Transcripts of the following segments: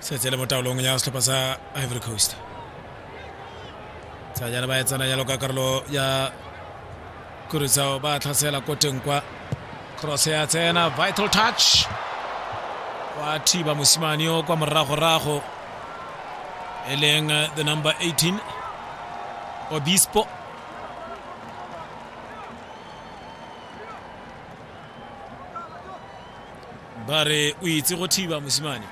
setse le mo taolong ya setlhopha sa ivory coast sa jana ba e tsena jalo ka karolo ya kurisao ba tlhasela ko teng kwa cross ya tsena vital touch wa thiba mosimane yo kwa moragorago e leng the number 18 obispo ba re o itse go thiba mosimane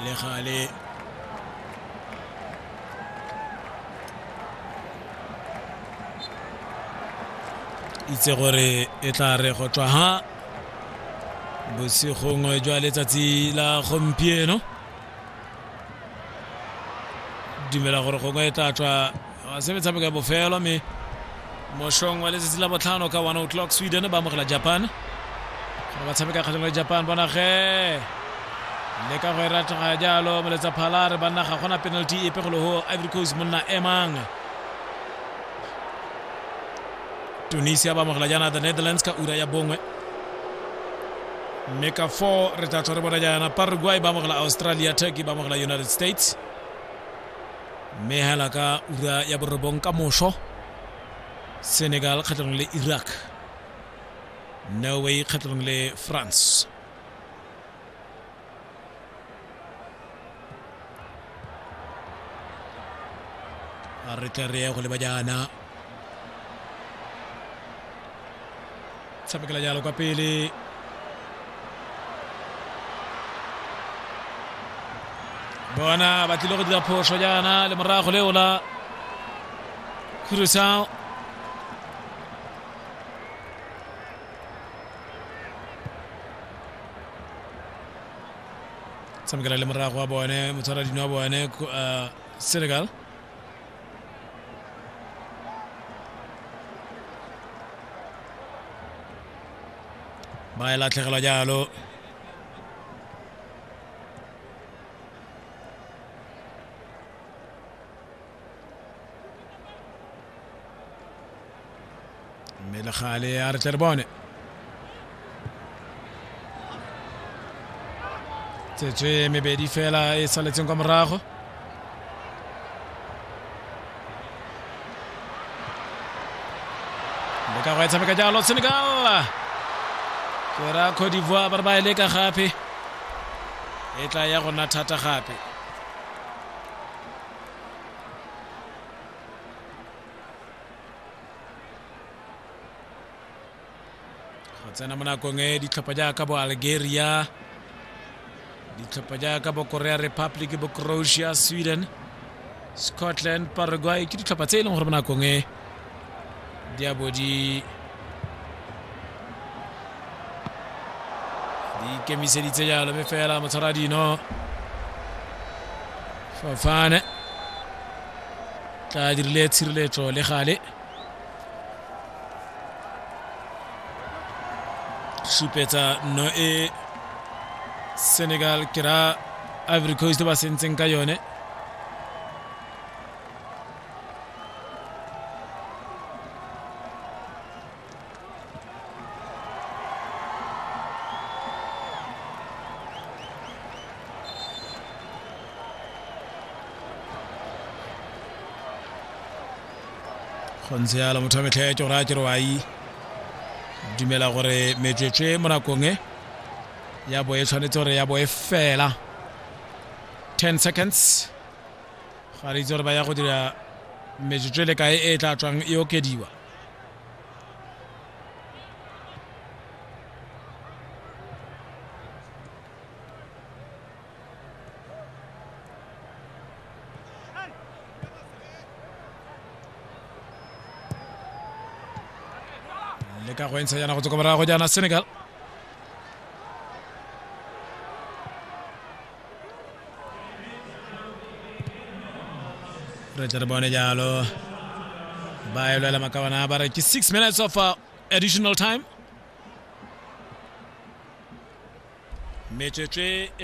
le gale itse gore e tla re go tswa ha bosigong jwa letsatsi la gompieno dumela gore gongwe e tla tswa se metshameko ya bofelo mme mošong wa letsatsi la botlhano ka one o'clock sweden ba amogela japan gore ba tshameka kgatlhang le japan bonage le ka go e ratega jalo moletsa phalare banna ga gona penalty epe go le go ivory coast monna emang tunisia ba amogela jaana the netherlands ka ura ya bongwe mme ka four re tla tswa re bona jaana paraguay ba amogela australia turkey ba amogela united states mme hela ka ura ya borobong ka moso senegal kgatlhanong le iraq norway kgatlhanong le france a re tle re ye go leba jaana tshamekela jalo kwa pele bona ba tlile go dira phoso jaana le morago leo la khurusao tshamekela le morago wa bone motshwara dino wa bone uh, senegal ba e latlhegelwa jalo mme le gale a re tle re bone tsetswe mebedi fela e saletseng kwa morago le ka go e tshameka jalo senegal ke ra cote d'ivoire ba re ba e leka gape e tla ya go nna thata gape go tsena mo nakong e ditlhopha jaaka bo algeria ditlhopha jaaka bo korea republic bo croatia sweden scotland paraguay ke ditlhopha tse e leng gore mo nakong e diabo di di ikemiseditse jalo mme fela motshwara dino fofane tla dirile tshireletso le gale supetsa nno e senegal ke ra ivory coast ba sentseng ka yone go ntse yalo motho wa metlheetso gore a ke rewai dumela gore metswetswe mo nakong e ya bo e tshwanetse gore ya bo e fela 10 seconds ga re itse gore ba ya go dira metsotso e le kae e e tla tswang e okediwa le ka go entsha jaana go tsoko morago jaana senegal Richard Bone Jalo ba e lwela makawana ba re ke six minutes of uh, additional time metswetswe e le